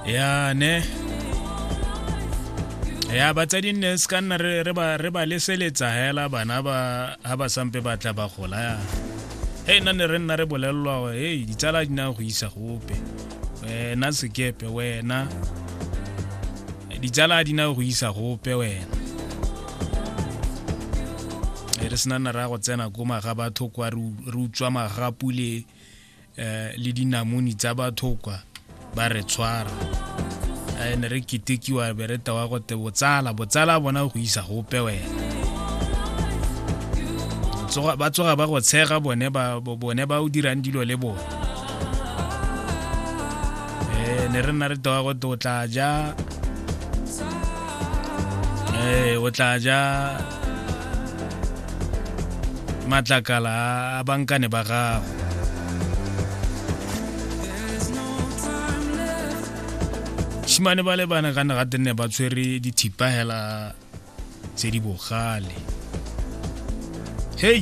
ya ne ya batsadi nne se ka nna re ba leseletsa hela bana ba ha ba sampe ba tla ba gola ya e nna ne re nna re bolelelwa e ditsala di na go isa gope wena sekepe wena ditsala di na go isa gope wena e re sena nna re ya go tsena ko maga batho kwa re utswa magapu le eh, le dinamoni tsa batho kwa ba re tshwara eh, ne re ketekiwa be re tewa gote botsala botsala bona go isa gope wena ba tsoga ba go tshega bone ba o dirang dilo le bone eh, ne re nna re tewa gote o tla ja o tla ja matlakala a bankane ba gago shimane ba le bana ka naga tenne ba tshwere dithipa hela tse di bogale hei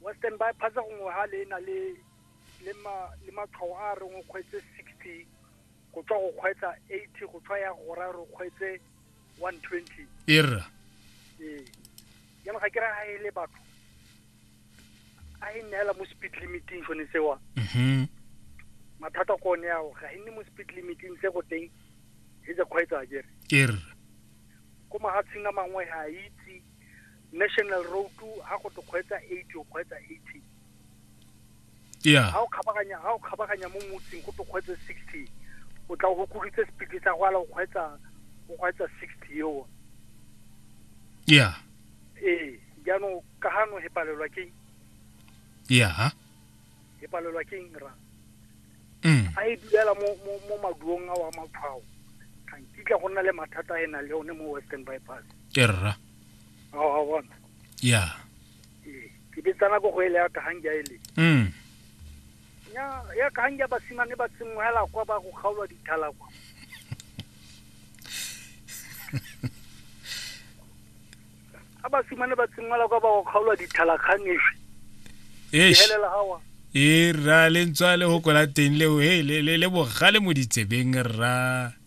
Western ba phatsa gongwe ha le na le le ma le matshwao a re ngwe kgwetse 60 go tswa go kgwetsa 80 go tswa ya go ra re kgwetse 120 erra ee ya ga ke ra ha ele batho a e neela mo speed limiting shone sewa mhm mathata ko ne ao ga e nne mo speed limiting se go teng e tsa kgwetsa ke re erra ko mahatsheng a mangwe ha a itse national road ha go tokgweetsa 80 o kgweetsa 80 yeah ha o khabaganya ha o khabaganya mo motseng go tokgweetsa 60 o tla go kuditse speed tsa go ala o kgweetsa o kgweetsa 60 yo yeah eh jaanong ka hano he palelwa ke yeah e palelwa ke eng ra mm. a e dulela mo mo mo maduong a wa matshwao ga nkitla go nna le mathata a e na le one mo western bypass ke rra a wa bona ya ee, ke betsana ko go ele ya kagange a ele mm. ya ya kagange ya basimane ba tsenngwela kwa ba go kgaolwa dithala kwa ga basimane ba tsenngwela kwa ba go kgaolwa dithalakganefe helela gawa e rra le ntswa le go kola teng leo he le bogale mo ditsebeng rra